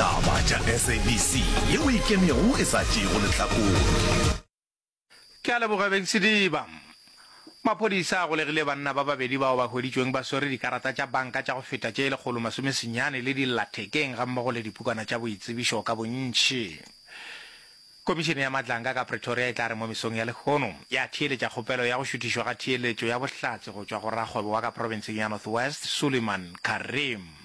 Taba tša SABC ye o ikemego e sa tšeego lehlakore. Ke a leboga Beng Sediba. Maphodisa a golegile banna ba babedi bao ba hweditšweng ba swere dikarata tša banka tša go feta tše lekgolo masome senyane le dillathekeng gammogo le dipukwana tša boitsebišo ka bontši. Komišene ya Madlanka ka Pretoria e tla re mo mesong ya lehono ya theeletša kgopelo ya go šuthišwa ga theeletšo ya bohlatse go tšwa go rakgwebo wa ka profenseng ya North West Suleiman Karim.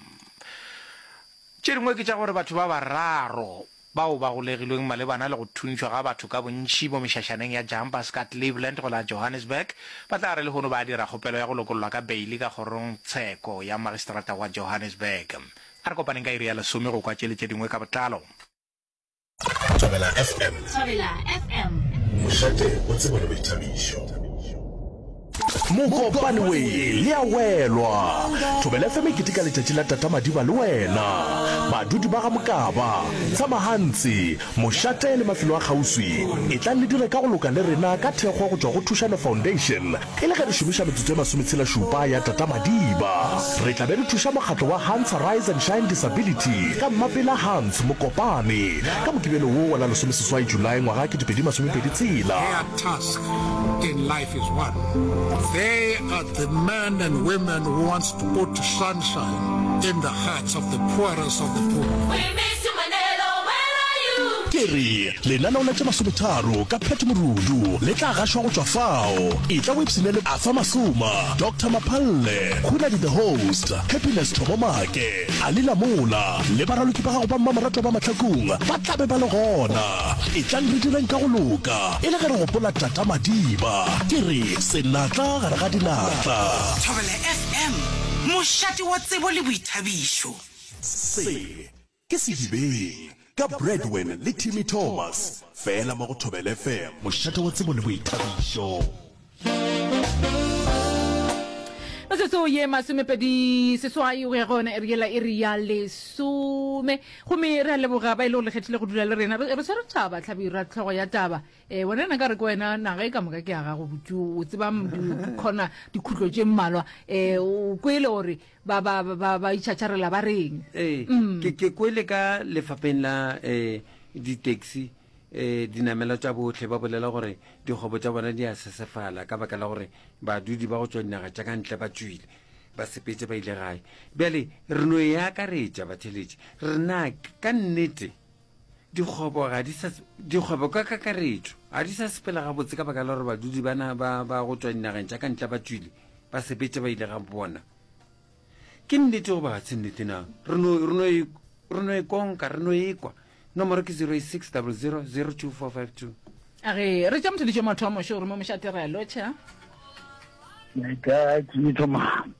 Tše dingwe ke tša gore batho ba bararo bao ba golegilweng malebana le go thuntšhwa ga batho ka bontši mo mešašaneng ya Jumpers ka Cleveland go la Johannesburg ba tla re lehono ba dira kgopelo ya go lokollwa ka beili ka kgorongtsheko ya Magistrata wa Johannesburg. A re kopaneng ka iri ya lesome go kwa tše le tše dingwe ka botlalo. Thobela FM. Thobela FM. Mošate o tsebo le boithabišo. mokopane we le a welwa thobele feme kete ka letšatši la tata madiba le wena badudi ba ga mokaba tshamagantsi mošate le mafelo a kgauswi e tlang le dire ka go loka le rena ka thekgo go tšwa go thušano foundation E le ge re šomiša metsotso e masometshela-šupa ya Tata-Madiba, re tla be re thuša mokgatlo wa Hans Rise and Shine Disability ka Mmapela Hans Mokopane ka Mokibelo wo wa la lesomeseswai Julae ngwaga kete pedi masomepedi tshela. Their task in life is one, they are the men and women who wants to put sunshine in the hearts of the poorest of the poor. We miss you Mandelo, where are you? Ke re, Lenaneo la tše masometharo ka Pat Morudu le tla gašwa go tšwa fao. Etla o ipshine le Arthur Masuma, Doctor Maphalle, Hunadi the Host, Happiness Thobo Make, Ali Lamola le baraloki ba gago ba mmamoratwa ba mahlakong ba tla be ba le gona. Etlang re direng ka go loka e le ge re gopola Tata Madiba. Ke re senatla gare ga dinatla. Thobela FM, mošate wa tsebo le boithabišo. Se. Ke Sedibeng, ka Bradwin le Timmy Thomas, fela mo go Thobela FM. Mošate wa tsebo le boithabišo. Metsotso ye masomepedi seswai go ya go yona ere yela e re ya lesome gomme re a leboga ba e le go lekgethile go dula le rena re tshwere taba tlhabi ra tlhogo ya taba um wena na ka re ke wena naga e ka moka ke ya gago botse o tseba dikgona dikhutlo tše mmalwa um o kwele gore ba ba ba ba itšhatšarela ba reng ee Mm. ke ke kwele ka lefapheng la um ditaxi um dinamela tša botlhe ba bolela gore dikgwebo tša bona di a sesefala ka baka la gore badudi ba go tšwa dinaga tša ka ntle ba tšwile ba sepetse ba ile gae bjale re no e akaretša batheletši re na k- ka nnete Dikgwebo ga di sa dikgwebo ka kakaretšo ga di sa sepela gabotse ka baka la gore badudi bana ba ba go tswa dinageng tša ka ntle ba tswile ba sepetša ba ile ga bona. Ke nnete goba ga se nnete na? Re no re no e re no e konka re no ekwa. Nomoro ke 08600 02452. A re re tša mothedišo motho wa mošo o re mo moša tirelo tša. Ka ke thoma.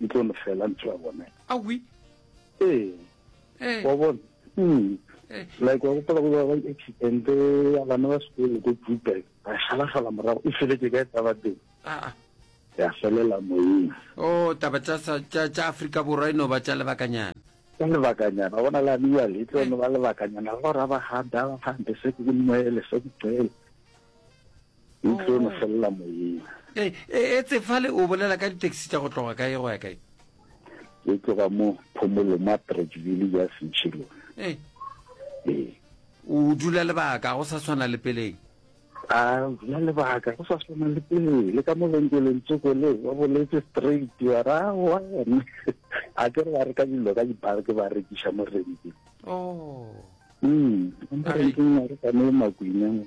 e tlo lefela ntho ya bona awi ee eh. wa bona hmm. eh. like wa gopola go ba ba accident ya bana ba sekolo ko Joburg ba shalafala morago e feletse ka taba teng ah, ah. ya felela moyeng o oh, taba tsa tsa Afrika borwa ino ba tsa lebakanyana ka lebakanyana bona la bua le tlo no ba lebakanyana go ra ba ga da ba fante se ke moele se ke tsele E tlo no felela moyeng. E, e, etse fale o bolela ka ditaxi tša go tloga kae go ya kae? E tloga mo Phomolo ma Bridgeville ya Sentšhilo. E. E. O dula lebaka go sa swana le peleng. A dula lebaka go sa swana le peleng le ka mo lenkeleng tsoko le ba boletse straight wa ra wa ne. A ke re ba re ka dilo ka di bar ke ba rekiša mo renke. Oh. Mm. Ba re ke mo re ka mo makwineng.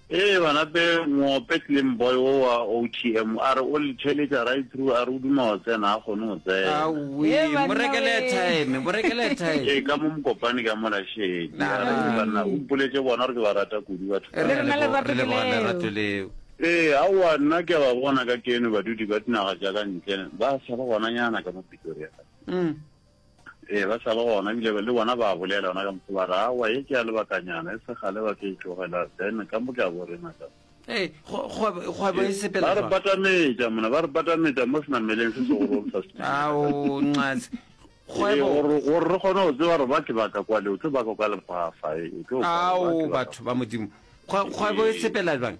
Ee banape moope Slim boy wo wa OTM a re o le theletša right through a re o duma go tsena a kgone go tsena. Awee mo rekele airtime mo rekele airtime. Ee ka mo mokopane ka mola shame ya re ke banna o mpoletše bona gore ke ba rata kudu batho ba. Re na le lerato ke leo. Lerato leo. Ee aowa nna ke a ba bona ka keno badudi ba dinaga tša ka ntle ba sa le gonanyana ka mo Pretoria. Ee, ba sa le gona, ebile le bona ba a bolela yona ka moso, ba re, Aowa, ye ke ya lebakanyana, e se kgale ba ka e tlogela, then ka mo ke a bo re ngaka. Ee, kgwebo, kgwebo e sepela Ba re jwang? batametša, mona, ba re batametša mo senameleng se segolong sa setimela. Ao, nxas. Ee, Kgwebo. gore, gore re kgone go tseba gore ba ke ba ka kwa le, o tlo ba ka kwa lefaafa, e, e tlo kwa, ba Ao, ke ba ka batho ba Modimo. Kgwe, kgwebo e Ee. sepela jwang?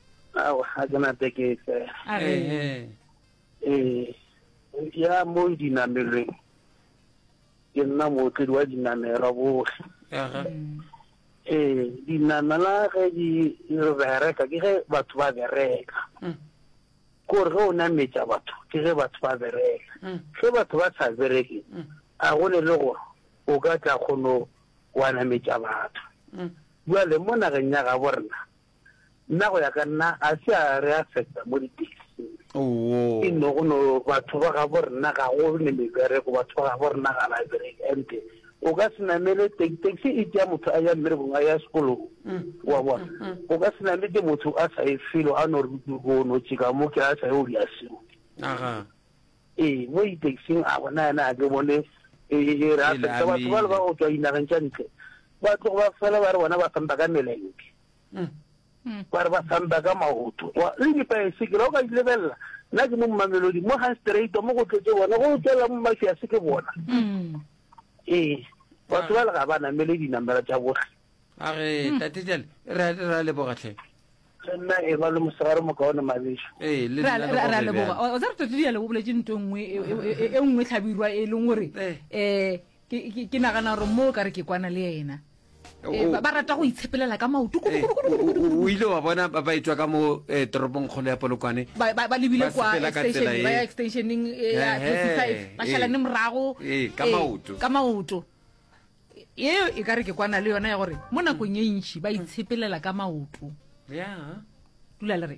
ao ga ke na tekete ee ya mo dinamelweng ke nna mootledi wa dinamelwa botlhe ee dinamela ge di bereka ke ge batho ba bereka mm. kore ge o nametša batho ke ge batho ba bereka mm. ge batho ba sa bereke mm. a go ne le gore o ka tla kgono wa nametša batho jale mo nageng ya gabo rena nna go ya ka nna a se a re affecta mo di-taxing e no go no batho ba ga bo rena ga go ne mebereko batho ba ga bo rena ga ba bereke ante o ka se namele taxi e tea motho a ya mmerekong a ya sekolong wa bona o ka se nametse motho a sa e felo a no re o no tšeka mo ke a sa ye o di a seo ee mo di-taxing a bona yena a ke bone e re affecta batho ba le ba go tswa dinageng tša ntle ba tlogo ba fela ba re bona ba sampa ka meleke ba re ba samba ka maoto le dipaesekela o ka di lebelela nna ke mo mmamelodi mo ga straight mo go tletse bona go tswelela mo mafi a se ke bona ee batho ba le ga ba namele dinamela tsa botlhe a re tate jale ra lebogatlhe le nna e ba le mosegare mo kaone mabeso ee le ra nna le ra- ra gore leboga bjang. o tsa re totedi jale o boletse nto nngwe e- e- e- e nngwe tlhabirwa e leng gore Eh. um ke ke- ke nagana gore mo o ka re ke kwana le ena Eh, ba rata go itshepelela ka maoto o ile wa bona ba ba etswa ka mo eh, toropong kgolo ya polokwane ba lebile kwa extensioning eh, ya five ba šalane morago ka maoto eo e ka re ke kwana le yona ya gore mo nakong e ntšhi ba itshepelela ka maoto dula le re